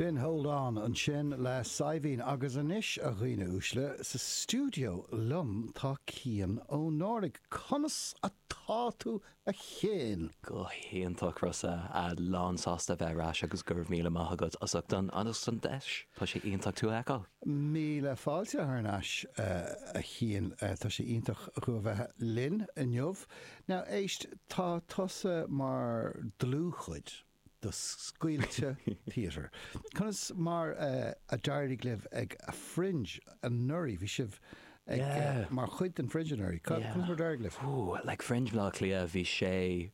B'in Hold On, ansin le Saidhbhín agus anois, a dhaoine uaisle, sa stiúideo liom tá Cian Ó Náraigh. Conas atá tú a Chiain? Go hiontach Rossa, lán sásta a bheith ar ais agus go raibh míle maith agat as ucht an as an deis, tá sé iontach tú a fheiceáil. Míle fáilte thar n-ais a Chiain, tá sé iontach thú a bheith linn inniu. Now éist, tá tusa mar dlúthchuid. de Scaoilte Theatre. Conas mar a d'éirigh libh ag Fringe anuraidh? Bhí sibh ag, mar chuid den Fringe anuraidh. Conas mar a d'éirigh libh? Like Fringe Bhaile Átha Cliath, bhí sé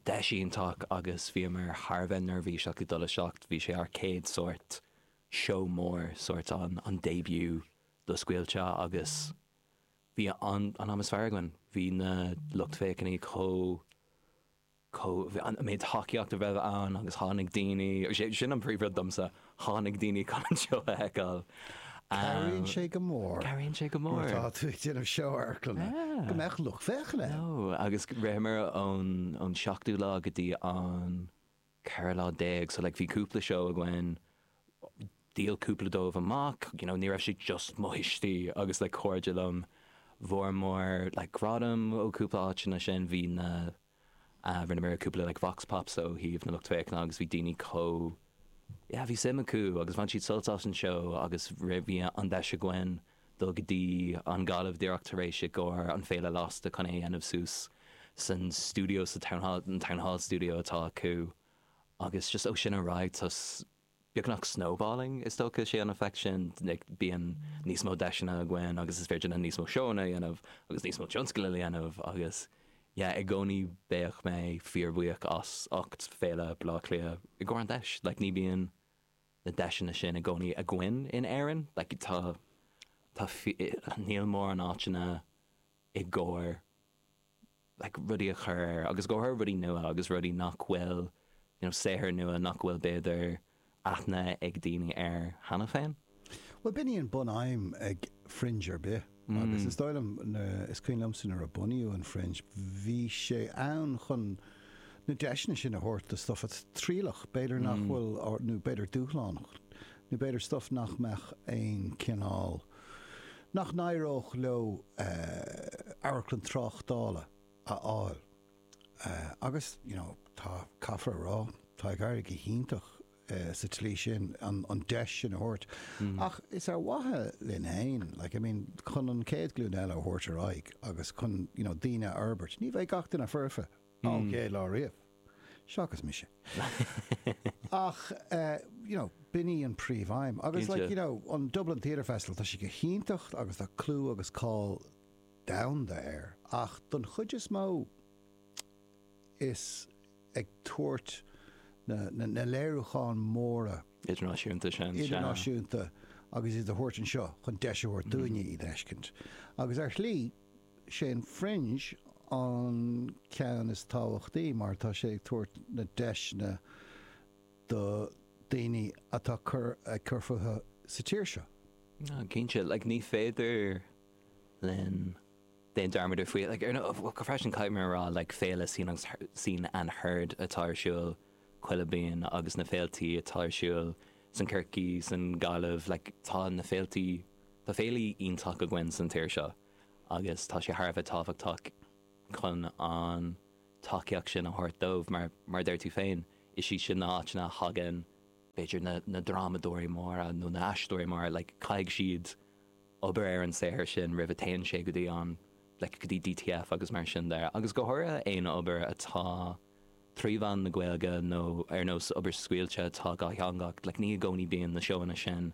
deis iontach agus bhíomar thar a bheith neirbhíseach ag dul isteach. Bhí sé ár gcéad sórt seó mór, sórt an an début do Scaoilte agus bhí an t-am is fearr againn. Bhí na lucht féachana chomh. an méid tacaíocht a raibh ann agus tháinig daoine, sé sin an príomh rud domsa, tháinig daoine chun an seó a fheiceáil. Cabhraíonn sé go mór. Cabhraíonn sé go mór. Nuair atá tú ag déanamh seó amharclainne. Yeah. Go mbeadh lucht féachana. No, agus ritheamar ón ón seachtú lá go dtí an ceathrú lá déag so like bhí cúpla seó againn, dhíol cúpla dóibh amach, you know ní raibh sé just mo thuistí agus like cairde liom, fuaireamar like gradam ó cúpla áiteanna sin bhí na Rinneamar cúpla like vox pops ó thaobh na lucht féachana agus bhí daoine chomh yeah bhí suim acu agus bhain siad sult as an seó agus bhí an deis againn dul go dtí an Ghaillimh díreach tar éis i gcomhair an Féile Lasta chun é a dhéanamh suas san stiúideo sa town hall an town hall studio atá acu agus just ó sin ar aghaidh tá beagnach snowballing is dócha. An effect sin like bíonn níos mó deiseanna againn agus is féidir linn níos mó seóanna a dhéanamh agus níos mó tionscail a dhéanamh agus yeah i gcónaí beidh mé fíor bhuíoch as ucht Féile Bhaile Átha Cliath i gcomhair an deis like ní bíonn na deiseanna sin i gcónaí againn in Éirinn like tá tá níl móran áiteanna i gcomhair like rudaí a chur ar agus go háirithe rudaí nua agus rudaí nach bhfuil you know saothair nua nach bhfuil b'fhéidir aithne ag daoine air cheana féin. Bhuel b'in í an bun-aidhm ag Fringe ar bith agus is dóigh liom, is cuimhin liomsa nuair a bunaíodh an Fringe bhí sé ann chun na deiseanna sin a thabhairt do stuff atá trialach, b'fhéidir nach bhfuil nó b'fhéidir dúshlánach nó b'fhéidir stuff nach mbeadh aon cineál nach n-éireodh leo amharclann tráchtála a fháil agus you know tá, caithfear a rá, tá ag éirí go hiontach sa tslí sin, an deis sin a thabhairt ach is ar mhaithe linn féin like I mean chun an chéad ghlúin eile a thabhairt ar aghaidh agus chun you know daoine a fhorbairt. Ní bheidh gach duine foirfe. OK, láthair riamh. Seachas mise. Ach you know, b'in í an príomhaidhm. Agus like, you know, an Dublin Theatre Festival, tá sí go hiontach agus tá clú agus cáil domhanda air. Ach don chuid is mó is ag tabhairt na léiriúcháin mhóra. Idirnáisiúnta sin. Idirnáisiúnta agus iad a thabhairt anseo chun deis a thabhairt dúinne iad a fheiscint. Agus ar shlí. Sé'n Fringe an ceann is tábhachtaí mar tá sé ag tabhairt na deiseanna do daoine atá cur ag cur fúthu sa tír seo. Ah, cinnte, like, ní féidir linn déan dearmad ar faoi, like, ar nó, go freisin caithfidh mé a rá, like, Féile Scene agus Scene and Heard atá ar siúl chuile bliain agus na féiltí atá ar siúl san Corcaigh, san Gaillimh, like, tá na féiltí, tá féiltí iontach againn san tír seo. agus tá sé thar a bheith tábhachtach chun an tacaíocht sin a thabhairt dóibh mar, mar a deir tú féin, is iad sin na áiteanna a thagann, b'fhéidir, na, na drámadóirí móra nó na aisteoirí móra, like, caithfidh siad obair ar an saothar sin roimh a téann sé go dtí an, like, go dtí DTF agus mar sin de, agus go háirithe aon obair atá trí mheán na Gaeilge nó ar nós obair scaoilte atá dátheangach, like, ní i gcónaí bíonn na seóanna sin.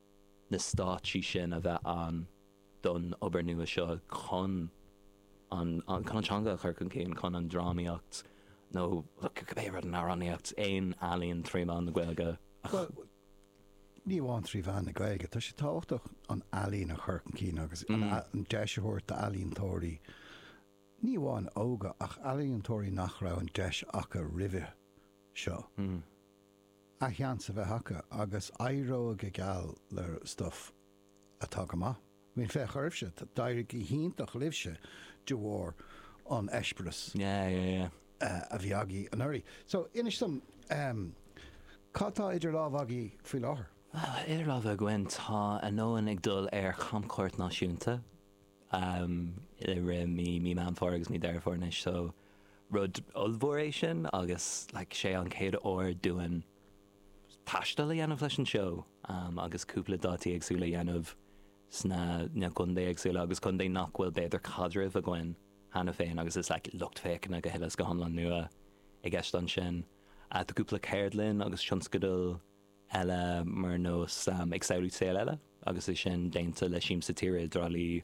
na stáitsí sin a bheith ann don obair nua seo chun an teanga a chur chun cinn, chun an drámaíocht nó cibé rud, an amhránaíocht, aon ealaín trí mheán na Gaeilge a chur. Ní amháin trí mheán na Gaeilge, tá sé tábhachtach an ealaín a chur chun cinn agus an mm. deis a thabhairt d'ealaíontóirí ní amháin óga ach ealaíontóirí nach raibh an deis acu roimhe seo. Mm. an seans a bheith acu agus éireoidh go geal le stuif atá go maith. Bhuel féach oraibhse, d'éirigh go hiontach libhse de bharr an eispéireas. Yeah yeah yeah. a bhí agaí anuraidh. So, inis dom, cad tá idir lámh agaí faoi láthair? Well, idir lámh againn táimid ag dul ar chamchuairt náisiúnta i rith mí Mí Meán Fómhair agus mí Deireadh Fómhair anois so, Rud ollmhór é sin agus like sé an chéad uair dúinn taisteal a dhéanamh leis an seó agus cúpla dátaí éagsúla a dhéanamh sna na contae éagsúla agus contae nach bhfuil b'fhéidir caidreamh againn cheana féin agus is like lucht féachana go huile is go hiomlán nua i gceist ansin. Tá cúpla ceardlann agus tionscadal eile mar nós ag samhlú saol eile agus sé sin déanta le Siamsa Tíre i dTrá Lí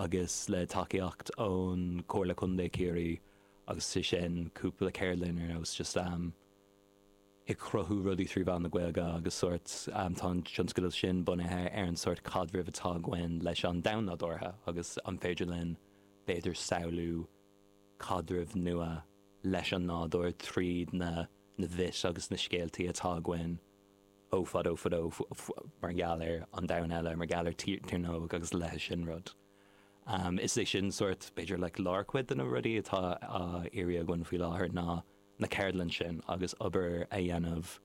agus le tacaíocht ón Comhairle Contae Chiarraí agus sé sin cúpla ceardlann ar nós just ag cruthú rudaí trí mheán na Gaeilge agus sórt tá an tionscadal sin bunaithe ar an sórt caidrimh atá againn leis an domhan nádúrtha agus an féidir linn b'fhéidir samhlú caidreamh nua leis an nádúr tríd na myths agus na scéaltaí atá againn ó fadó fadó mar gheall ar an domhan eile, mar gheall ar Tír na nÓg agus a leithéid sin rud. Is é sin sórt, b'fhéidir, like lárchuid de na rudaí atá á iarraidh againn faoi láthair ná na ceardlainn sin agus obair a dhéanamh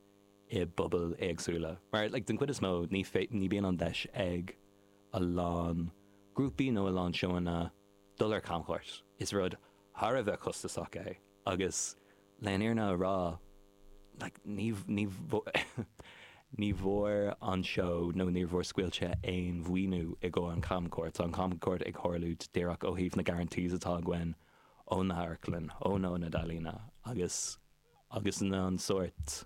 i bpobail éagsúla mar like den chuid is mó ní bhíonn an deis ag a lán grúpaí nó a lán seóanna dul ar camchuairt. Is rud thar a bheith costasach é agus le an fhírinne a rá ní bhfuair an seó nó níor bhfuair Scaoilte aon mhaoiniú i gcomhair an chamchuairt. Tá an chamchuairt ag tharlú díreach ó thaobh na guarantees atá againn ó na hamharclann, ón ionad ealaíne agus na an sórt.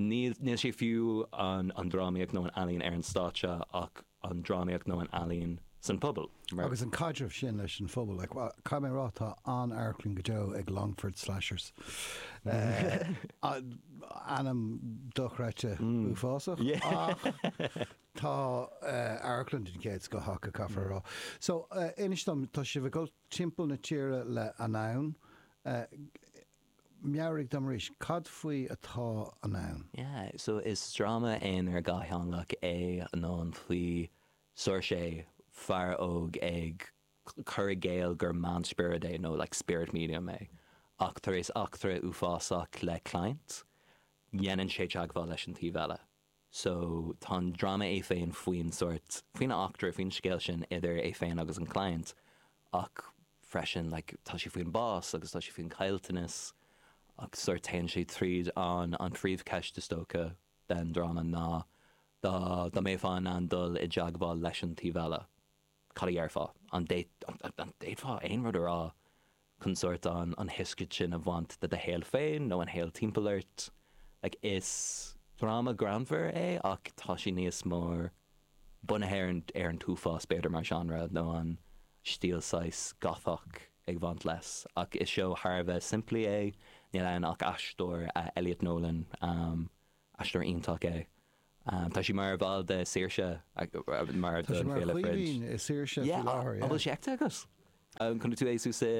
Níl sé fiú an drámaíocht nó an ealaín ar an stáitse ach an drámaíocht nó an ealaín san phobal. Agus an caidreamh sin leis an phobal, caithfidh mé a rá tá an-amharclann go deo ag Longford Slashers. Ainm dochreidte uafásach ach tá amharclann den chéad scoth acu caithfear a rá. So inis dom, tá sibh ag dul timpeall na tíre le Anonn. Meabhraigh dom arís, cad faoi atá Anonn? Yeah, so is dráma aonair dhátheangach é Anonn faoi Seoirse, fear óg ag cur i gcéill gur meánspiorad é nó like spirit medium é ach tar éis eachtra uafásach le client déanann sé teagmháil leis an taobh eile. so tá an dráma é féin faoin sórt, faoin eachtra, faoin scéal sin idir é féin agus an client ach freisin like tá sé faoin bás agus tá sé faoin caillteanas ach sórt téann sé tríd an, an phríomhcheist is dócha den dráma ná dá, dá mbeifeá in ann dul i dteagmháil leis an taobh eile, Cad a dhéarfá? An d'fhéadfá aon rud a rá chun sórt an shioscaid sin a bhaint de do shaol féin nó an shaol timpeall ort? Is dráma greannmhar é ach tá sé níos mór bunaithe ar an t-uafás b'fhéidir mar seánra nó an stíl saghas Gothach ag bhaint leis. Ach is seó thar a bheith simplí é. Níl ann ach aisteoir, Elliot Nolan. Aisteoir iontach é. Tá sé mar bhall de Saoirse mar Tá sé don mar Féile Fringe. Chaoimhín i Saoirse faoi Yeah, láthair, an bhfuil yeah. sé feicthe agat? An chonaic tú é suas i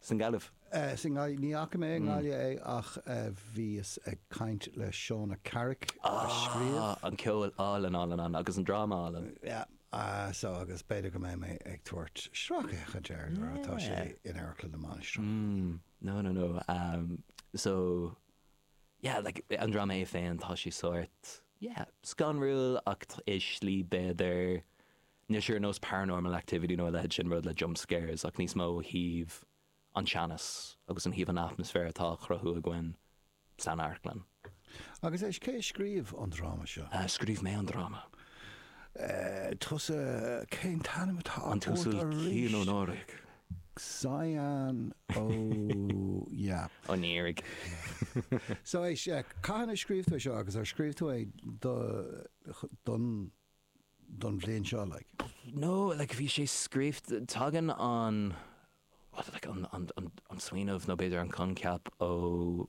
san Gaillimh? Eh, sa nGail- ní fhaca mé i nGaillimh é ach eh, bhíos ag caint le Shauna Carrick a scríobh. Ah, an ceol álainn álainn ann agus an dráma álainn. Yeah, ah, so agus b'fhéidir go mbeidh mé ag tabhairt sracfhéachaint air nuair atá sé in Amharclann na Mainistreach. No, no, no, so yeah like an drama é féin tá sé sórt yeah scanrúil ach i slí b'fhéidir níos ar nós Paranormal Activity nó a leithéid sin rud le jump scares ach níos mó ó thaobh an teannas agus ó thaobh an atmaisféar atá á chruthú againn san amharclann. Agus cé a scríobh an dráma seo? Uh, scríobh mé an dráma. Uh, tusa cén t-ainm atá ortsa Cian Ó Náraigh? Cian Ó, yep. Ó Náraigh. So é seo, cathain a scríobh tú é seo agus ar scríobh tú é don don bhliain seo like? No, like bhí sé scríobh, tagann an like an smaoineamh nó b'fhéidir an coincheap ó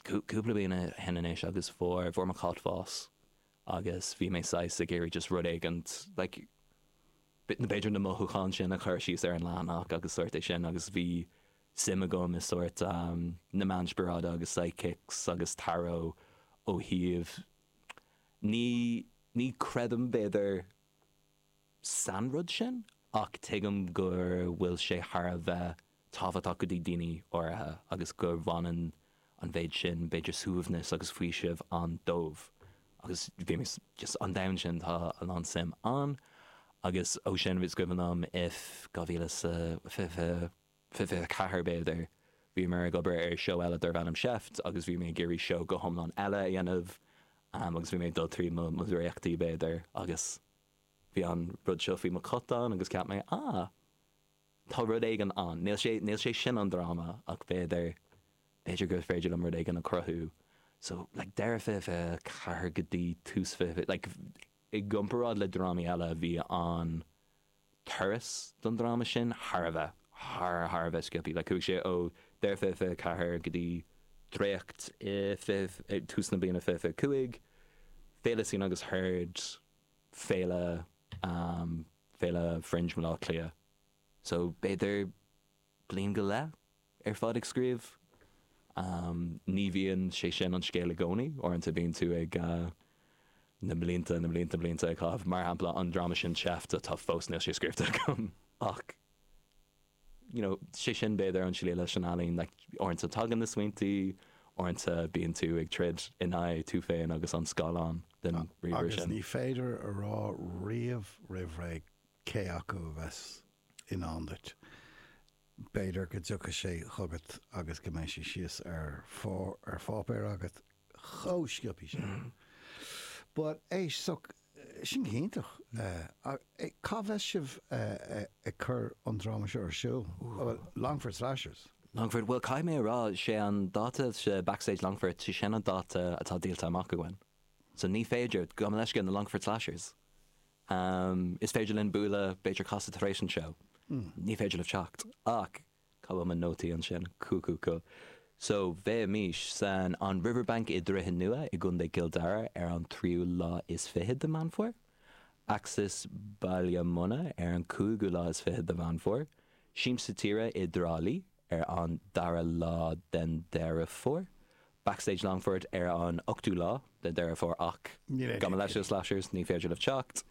cúpla bliain ó shin anois agus fuair mo chat bás agus bhí mé saghas ag iarraidh just rud éigin like b'fhéidir na mothúcháin sin a chur síos ar an leathanach agus sórt é sin agus bhí suim agam i sórt na meáin spioradálta agus psychics agus tarot ó thaobh ní ní creidim b'fhéidir san rud sin ach tuigim go bhfuil sé thar a bheith tábhachtach do dhaoine áirithe agus go mbaineann an mhéid sin, b'fhéidir, suaimhneas agus faoiseamh ann dóibh agus bhí just an domhan sin, tá a lán suim ann agus ó sin is cuimhin liom i 2024, b'fhéidir, bhíomar ag obair ar seó eile darbh ainm Seift agus bhí mé ag iarraidh seó go hiomlán eile a dhéanamh agus bhí mé ag dul trí mo dhréachtaí, b'fhéidir, agus bhí an rud seo faoi mo chat ann agus cheap mé, ah. Tá rud éigin ann. Níl sé, níl sé sin an dráma ach b'fhéidir, b'fhéidir gur féidir liom rud éigin a chruthú. So, like, deireadh fiche fiche a ceathair go dtí tús fiche fiche, like, i gcomparáid le drámaí eile bhí an turas don dráma sin thar a bheith, thar, thar a bheith sciobthaí. Like, chuaigh sé ó deireadh fiche fiche a ceathair go dtí dréacht i fiche, tús na bliana fiche fiche a cúig, féile sin agus thart, féile féile fringe Bhleá Cliath so b'fhéidir bliain go leith ar fad ag scríobh. Ní bhíonn sé sin an scéal i gcónaí, uaireanta bíonn tú ag na blianta na blianta blianta ag caitheamh. Mar shampla an dráma sin Seift atá fós níl sé scríofa agam ach. you know, 'sé sin b'fhéidir an scéal leis an ealaín, like, uaireanta tagann na smaointí, uaireanta bíonn tú ag troid in aghaidh tú féin agus an scáileán den ríomhaire sin. Agus ní féidir a rá riamh roimh ré cé acu a bheas i ndán duit. B'fhéidir go dtiocfaidh sé chugat agus go mbeidh sé síos ar pháipéar agat chomh sciobthaí sin. But é soc Sin go hiontach. Cá mbeidh sibh ag cur an dráma seo ar siúl? Longfort Slashers? Longfort, bhuel caithfidh mé a rá, sé an dáta sa Backstage Longfort, sé sin an dáta atá díolta amach againn. So ní féidir, gabh mo leithscéal na Longfort Slashers, is féidir linn bualadh b'fhéidir casta tar éis an seó. Ní féidir libh teacht. Ach Cá bhfuil mo nótaí ansin? Cool, cool, cool. So, beimid san An Riverbank i Droichead Nua i gContae Cill Dara ar an tríú lá is fiche de Meán Fómhair, Axis Baile Munna ar an cúigiú lá is fiche de Mheán Fómhair, Siamsa Tíre i dTrá Lí ar an dara lá den Deireadh Fómhair, Backstage Longfort ar an 8ú lá de Deireadh Fómhair ach Níl aon gabh mo leithscéal ticéid. Slashers ní féidir libh teacht.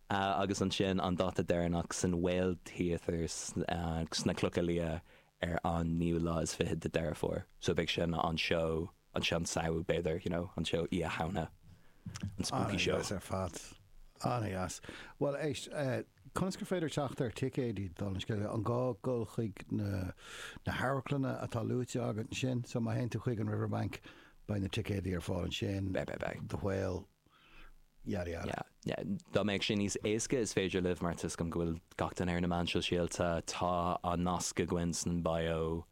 Agus ansin an dáta deireanach san Whale Theatre sna Clocha Liath ar an 9ú lá is fiche de Deireadh Fómhair. So beidh sin an seó, an seó an Samhain b'fhéidir, you know, an seó Oíche Shamhna, an spooky seó. Ana dheas ar fad. Ana dheas. Bhuel éist, eh, Conas gur féidir teacht ar ticéidí don scéal? An gá dul chuig na hamharclanna atá luaite agat ansin? So má théann tú chuig an Riverbank, beidh na ticéidí ar fáil ansin? Beidh, beidh, beidh. The Whale, yada yada. Yeah, yeah. Dá mbeadh sé níos éasca is féidir libh mar tuigim go bhfuil gach duine ar na meáin shóisialta, tá an nasc againn san bio.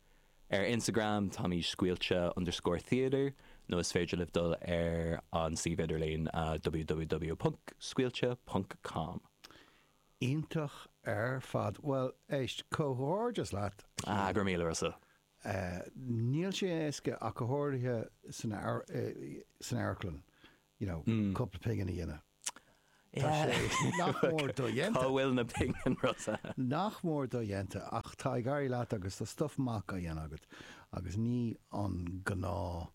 Ar Instagram táimid scaoilte underscore theatre nó is féidir libh dul ar an suíomh idirlín www.scaoilte ponc com. Iontach ar fad. Bhuel, éist, comhghairdeas leat, a Chiaráin. Ah, go raibh míle maith agatsa. Níl sé éasca ach go háirithe san amharclann, you know, cúpla pingin a dhéanamh. Tá sé nach mór dodhéanta. Cá bhfuil na pingin seo? Nach mór dodhéanta, ach tá ag éirí leat agus tá stuif maith á dhéanamh agat agus ní an gnáth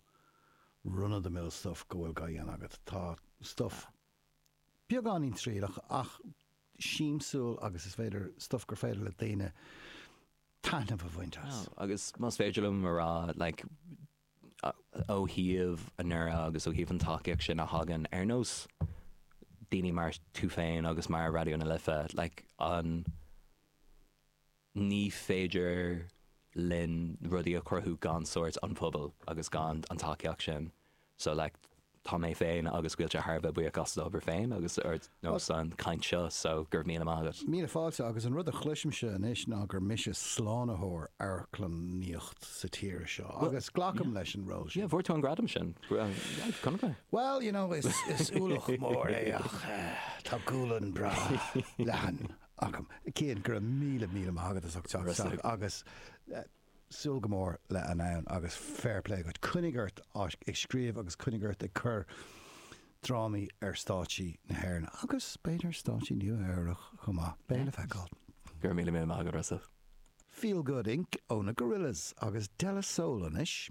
run of the mill stuif go bhfuil á dhéanamh agat. Tá stuif beagáinín triaileach ach siamsúil agus is féidir, stuif gur féidir le daoine taitneamh a bhaint as. Agus más féidir liom a rá, like, ó thaobh an airgid agus ó thaobh an tacaíocht sin a thagann ar nós daoine mar tú féin agus mar Raidió na Life like an ní féidir linn rudaí a chruthú gan sórt an pobal agus gan an tacaíocht sin so like Tá mé féin agus Caoilte thar a bheith buíoch as an obair féin agus ar nós an chaint seo so go raibh míle maith agat. Míle fáilte agus an rud a chloisimse anois ná gur mise slánaitheoir amharclannaíocht sa tír seo agus glacaim leis an ról sin. Yeah, fuair tú an gradam sin. Well, you know, is ualach mór é ach tá gualainn breá leathan agam. Cian, go raibh míle, míle maith agat as ucht teacht isteach agus. súil go mór le dul ann agus fair play dhuit. Coinnigh ort ag scríobh agus coinnigh ort ag cur drámaí ar stáitsí na hÉireann agus b'fhéidir ar stáitsí Nua Eabhrach chomh maith. Beidh le feiceáil. Go raibh míle míle maith agat Russell. Feel Good Inc ó na Gorillaz agus De La Soul anois.